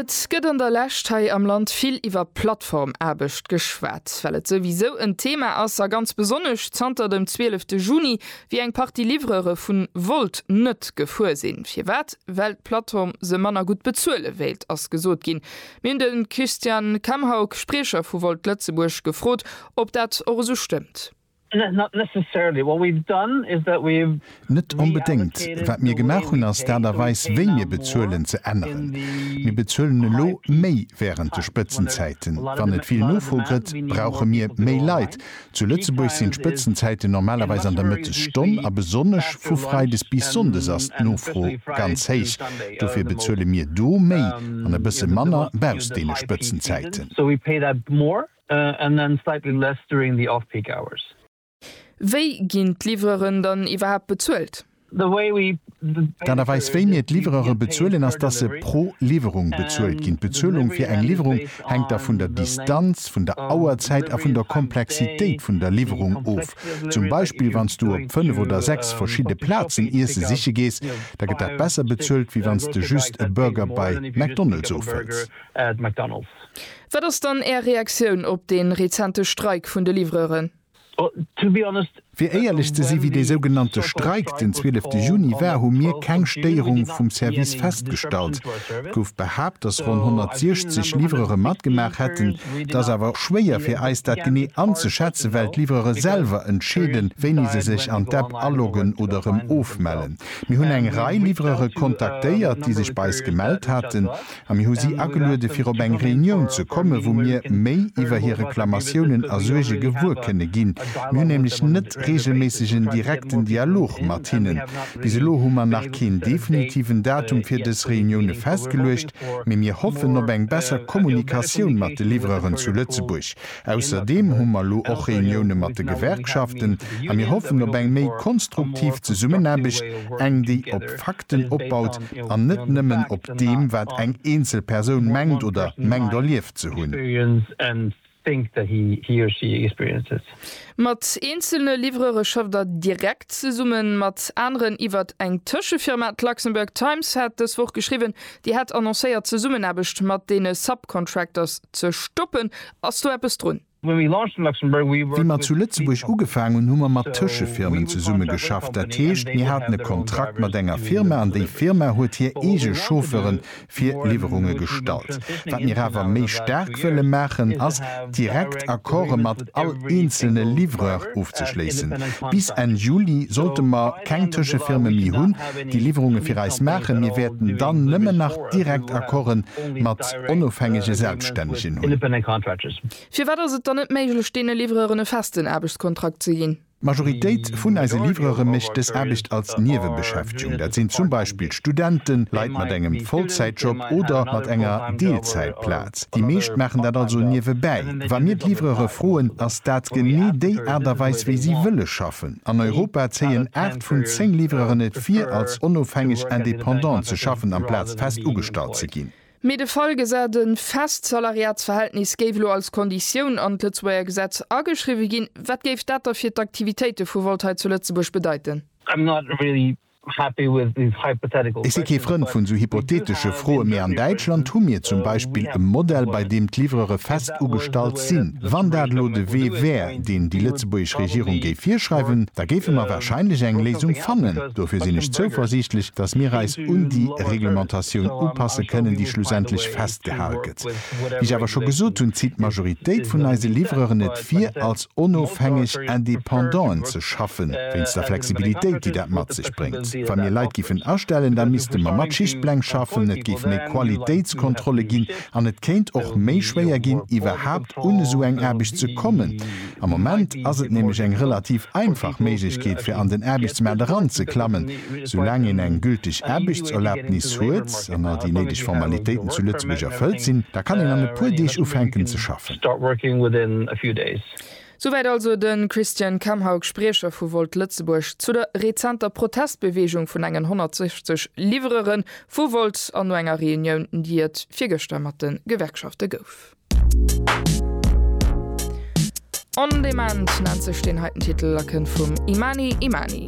Et gëtt an der Lescht hei am Land vill iwwer Plattformaarbecht geschwat, well et souwisou en Thema ass, a ganz besonnesch zanter dem 12 Juni, wéi eng Partie Livreure vun Wolt net gefuer sinn. Firwat? Well d'Plattform se manner gutt bezuele wéilt, ass gesot ginn. Mir hunn de Christian Kamhaug, Spriecher vu Wolt Lëtzebuerg, gefrot, ob dat och esou stëmmt. Net onbedéngt. Wat mir gemaach hunn, ass d'Aart a Weis, wéi mir bezuelen, ze änneren. Mir bezuelen elo méi wärend de Spëtzenzäiten. Wann et vill Nofro gëtt, brauche mir méi Leit. Zu Lëtzebuerg sinn d'Spëtzenzäiten normalerweis an der Mëttesstonn, a besonnesch vu freides bis sonndes ass d'Nofro ganz héich. Dofir bezuele mir do méi an e bësse manner bausst deene Spëtzenzäiten. And then slightly less during the off-peak hours. Wéi ginn d'Livreuren dann iwwerhaapt bezuelt? D'Aart a Weis wéi mir d'Livreuren bezuelen ass, dass se pro Liwwerung bezuelt ginn. D'Bezuelung fir eng Liwwerung hänkt da vun der Distanz, vun der Auerzäit a vun der Komplexitéit vun der Liwwerung of. Zum Beispill wann s du op 5 oder 6 verschidde Plazen iesse siche gees, da gëtt dat besser bezuelt wéi wann s de just e Burger bei McDonald's ofhëls. Wat ass dann Är Reaktioun op de rezente Streik vun de Livreuren? Fir éierlech ze si wéi dee sougenannte Streik den 12 de Juni war, hu mir keng Stéierung vum Service festgestallt. Et gouf behaapt, datt ronn 160 Livreure matgemaach hätten. Et ass awer schwéier fir eis dat genee anzeschätzen, well d'Livreure selwer entscheeden, wéini se sech an d'App aloggen oder erëm ofmellen. Mir hunn eng Rei Livreure kontaktéiert, déi sech bei eis gemellt haten. A mir hu si ageluede fir op eng Reunioun ze komme wou mir méi iwwer hir Reklamatiounen a Suerge gewuer kënne ginn. Mir hunn nämlech net reegelméisseg en direkten Dialog mat hinnen. Bis elo hu mer nach keen definitiven Datum fir dës Reunioune festgeluecht, mee mir hoffen op eng besser Kommunikatioun mat de Livreuren zu Lëtzebuerg. Ausserdeem hu mer elo och Reunioune mat de Gewerkschaften a mir hoffen op eng méi konstruktiv Zesummenaarbecht, eng déi op Fakten opbaut an net nëmmen op deem wat eng eenzel Persoun mengt oder mengt erlieft ze hunn. Mat eenzelne Livreure schafft Der direkt zesummen, mat aneren iwwert eng Tëschefirma? D'Luxembourg Times hat dës Woch geschriwwen, Dir hat annoncéiert d'Zesummenaarbecht mat deene Subcontractors ze stoppen. Ass do eppes drun? Wéi mer zu Lëtzebuerg ugefaang hunn, hu mer mat Tëschefirmen zesumme geschafft. Dat heescht, mir haten e Kontrakt mat enger Firma an déi Firma huet hir eege Chauffeure fir Liwwerunge gestallt. Wat mir awer méi staark wëlle maachen, ass direkt Accorde mat all eenzelne Livreur ofzeschléissen. Bis Enn Juli sollte mer. keng Tëschefirme méi hunn, déi Liwwerunge fir eis maachen. Mir wäerten dann nëmmen nach direkt Accorden mat onofhängege Selbststännegen hunn. Firwat ass et dann net méiglech, deene Livreuren e festen Aarbechtskontrakt ze ginn? D'Majoritéit vun eise Livreure mécht dës Aarbecht als Niewebeschäftegung. Dat sinn zum Beispill Studenten, Leit mat engem Vollzäitjob oder mat enger Deelzäitplaz. Déi meescht maachen dat also niewebäi. Wa mir d'Livreure froen, ass dat genee déi Aart a Weis, wéi si wëlle schaffen. An Europa zéien 8 vun 10 Livreuren et vir, als onofhängeg Independant ze schaffen amplaz fest ugestallt ze ginn. Mee de Fall gesäit, e fest Salariatsverhältnis géif elo als Konditioun an d'Lëtzebuerger Gesetz ageschriwwe ginn. Wat géif dat da fir d'Aktivitéite vu Volt hei zu Lëtzebuerg bedeiten? Ech si kee Frënd vun esou hypothetesche Froen, mee an Däitschland hu mir zum Beispill e Modell, bei deem d'Livrere fest ugestallt sinn. Wann dat elo de Wee wär, deen déi lëtzebuergesch Regierung géif virschreiwen, da géife mer warscheinlech eng Léisung fannen. Dofir sinn ech zouversiichtlech, datt mir eis un déi Reglementatioun upasse kënnen, déi schlussendlech festgehal gëtt. Wéi ech awer scho gesot hunn, zitt d'Majoritéit vun eise Livreren et, fir als onofhängeg Indépendant'en ze schaffen, wéinst der Flexibilitéit, déi dat mat sech bréngt. Wa mir Leit giffen astellen, da misste mer mat Schichtpläng schaffen, et géif méi Qualitéitskontrolle ginn an et kéint och méi schwéier ginn, iwwerhaapt un esou eng Aarbecht ze kommen. Am Moment ass et nämlech eng relativ einfach Méiglechkeet, fir an den Aarbechtsmaart eranzeklammen, soulaang een eng gülteg Aarbechtserlaubnis huet an all déi néideg Formalitéiten zu Lëtzebuerg erfëllt sinn, da kann een an e puer Deeg ufänken ze schaffen. Start working within a few days. Souwäit also de Christian Kemhaug, Spriecher vu Volt Lëtzebuerg, zu der rezenter Protestbeweegung vun engen 160 Livrere vu Volt an no enger Reunioun, déi et virgëschter mat de Gewerkschafte gouf. On Demand nennt sech deen heiten Titel a kënnt vum Imani Imani.